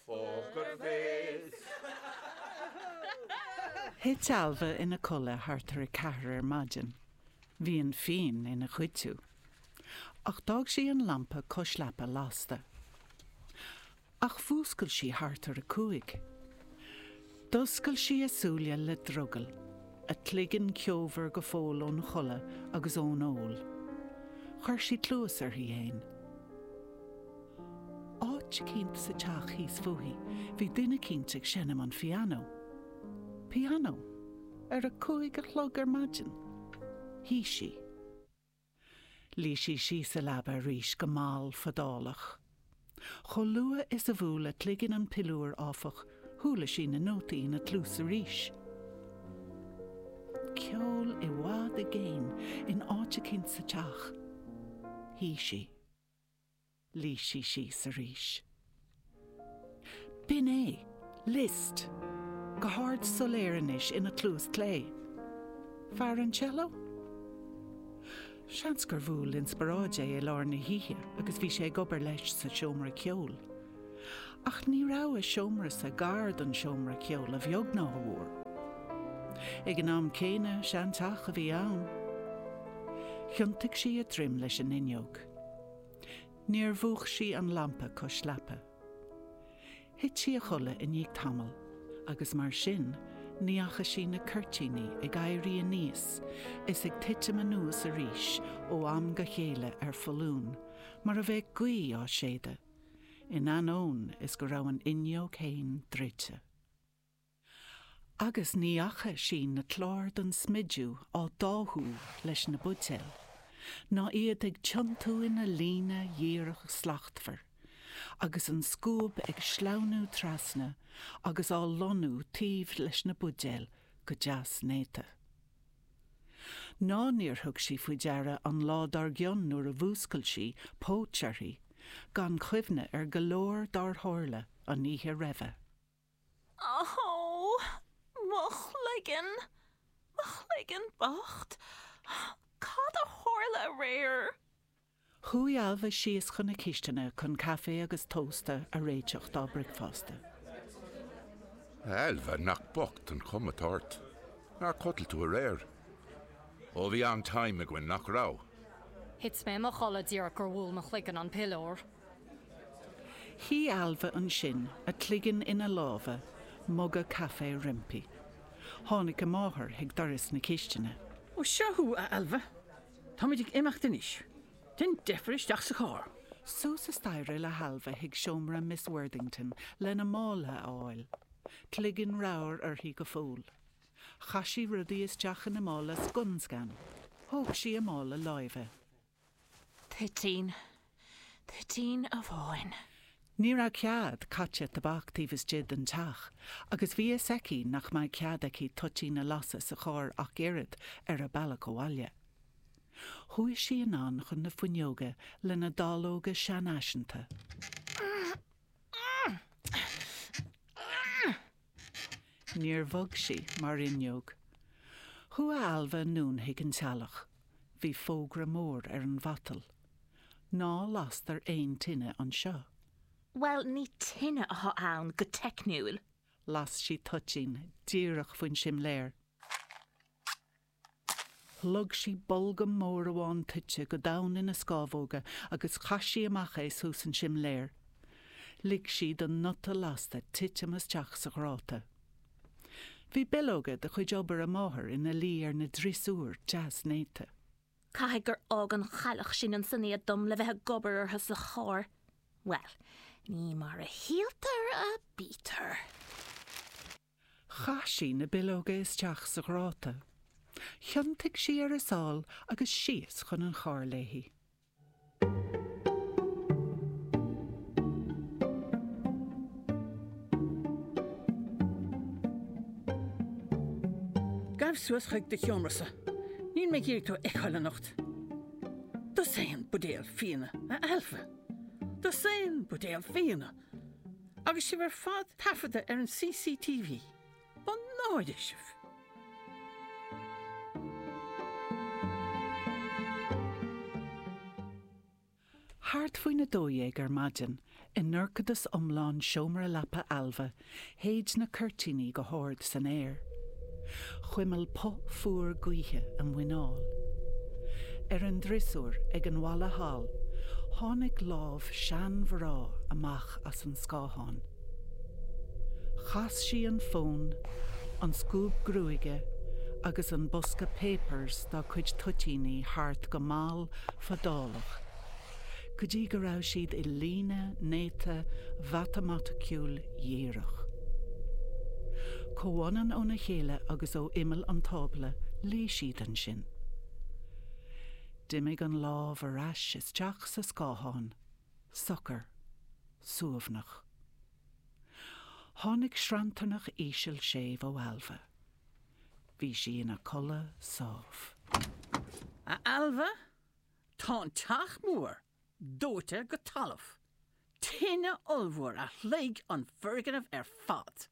Poker Face! Thit Ailbhe ina codladh thart ar a ceathair ar maidin. Bhí an fíon ina chuidiú. Ach d'fhág sí an lampa cois leapa lasta. Ach mhúscail sí thart ar a cúig. D'oscail sí a súile le drogall, a cloigeann ceomhar go fóill ón chodladh agus ón ól. Chuir sí cluas uirthi fhéin. Áit eicínt sa teach thíos fúithi bhí duine eicínt ag seinm an phianó. Pianó? Ar a cúig a chlog ar maidin? Shuigh sí. Luigh sí síos sa leaba arís go mall fadálach. Chomh luath is a bhuail a cloigeann an piliúr, áfach, chuala sí na nótaí ina cluas arís. Ceol i bhfad i gcéin in áit eicínt sa teach. Shuigh sí. Luigh sí síos arís. B'in é. Liszt. Go hard soiléir anois ina cluas clé. Fear an cello? Seans gur bhuail inspioráid é i lár na hoíche agus bhí sé ag obair leis sa seomra ceoil. Ach ní raibh a seomrasa gar don seomra ceoil a bheag ná a mhór. Ag an am céanna, seanteach a bhí ann. Thiontaigh sí a droim leis an fhuinneog. Níor mhúch sí an lampa cois leapa. Thit sí a chodladh i ndiaidh tamaill agus mar sin ní fhaca sí na cuirtíní ag éirí aníos is ag titim anuas arís ó am go chéile ar foluain mar a bheadh gaoth á séideadh. in ainneoin is go raibh an fhuinneog fhéin druidte. Agus ní fhaca sí na cláir don smideadh á dtáthú leis na buidéil, ná iad ag tiontú ina líne dhíreach slachtmhar, agus an scuab ag sleamhnú trasna agus á lonnú taobh leis na buidéil go deas néata. Ná níor thug sí faoi deara an lá dár gcionn nuair a mhúscail sí, póit uirthi, gan chuimhne ar go leor dár tharla an oíche roimhe. Ááá, mo chloigeann, mo chloigeann bocht, cad a tharla aréir? Chuaigh Ailbhe síos chun na cisteanadh chun caife agus tósta a réiteach dá bricfeasta. A Ailbhe, nach bocht an chuma atá ort. Nár chodail tú aréir? Ó, bhí an-time againn, nach raibh? Thit mé i mo chodladh díreach gur bhuail mo chloigeann an piliúr. Shuigh Ailbhe ansin, a cloigeann ina lámha, muga caife roimpi. Tháinig a máthair chuig doras na cisteanadh. Ó, seo thú, a Ailbhe. Táimid ag imeacht anois. Déan deifir isteach sa charr. Suas an staighre le hAilbhe chuig seomra Miss Worthington lena mála a fháil. Cloigeann ramhar uirthi go fóill. Chaith sí rudaí isteach ina mála scun scan. Thóg sí a mála láimhe. Toitín. Toitín amháin. Ní raibh cead caite tobac taobh istigh den teach agus bhí fhios aici nach mbeadh cead aici toitín a lasadh sa charr ach oiread ar a bealach abhaile. Chuaigh sí anonn chun na fuinneoga lena dallóga seanfhaiseanta. Níor bhog sí mar fhuinneog. Chuaigh Ailbhe anonn chuig an teallach. Bhí fógra mór ar an mhatal. Ná lastar aon tine anseo. Bhuel, ní tine atá ann go teicniúil. Las sí toitín díreach faoin simléar. Shlog sí bolgam mór amháin toite go domhain ina scámhóga agus chaith sí amach é suas an simléar. Lig sí don nuta lasta titim isteach sa ghráta. Bhí billeoga de chuid obair a máthar ina luí ar an driosúr deas néata. Caithfidh gur fhág an chailleach sin ansin iad dom le bheith ag obair orthu sa charr. Bhuel, ní mar a shíltear a bítear. Chaith sí na billeoga isteach sa ghráta. Thiontaigh sí ar a sáil agus síos chun an chairr léi. Gabh suas chuig do sheomra-sa. Níl mé ag iarraidh tú a fheiceáil anocht. Dosaen buidéal fíona, a Ailbhe. Dosaen buidéal fíona! Agus sibh ar fad taifeadta ar an CCTV, mo náire sibh! Thart faoin 12 ar maidin, i ndorchadas iomlán seomra leapa Ailbhe, Shéid na cuirtíní go hard san aer. Chuimil puth fuar gaoithe a muineál. Ar an driosúr ag an bhalla thall tháinig lámh seanmhná amach as an scáthán. Chas sí an fón, an scuab gruaige agus an bosca 'Papers' dá cuid toitíní thart go mall fadálach. go dtí go raibh siad i líne néata mhatamaiticiúil dhíreach. comh-fhad óna chéile agus ó imeall an tábla leag siad ansin. D'imigh an lámh ar ais isteach sa scáthán, socair, suaimhneach. Tháinig sranntarnach íseal séimh ó Ailbhe. Bhí sí ina codladh sámh. A Ailbhe? Tá an teach mór dóite go talamh. Tine ollmhór a shloig an foirgneamh ar fad.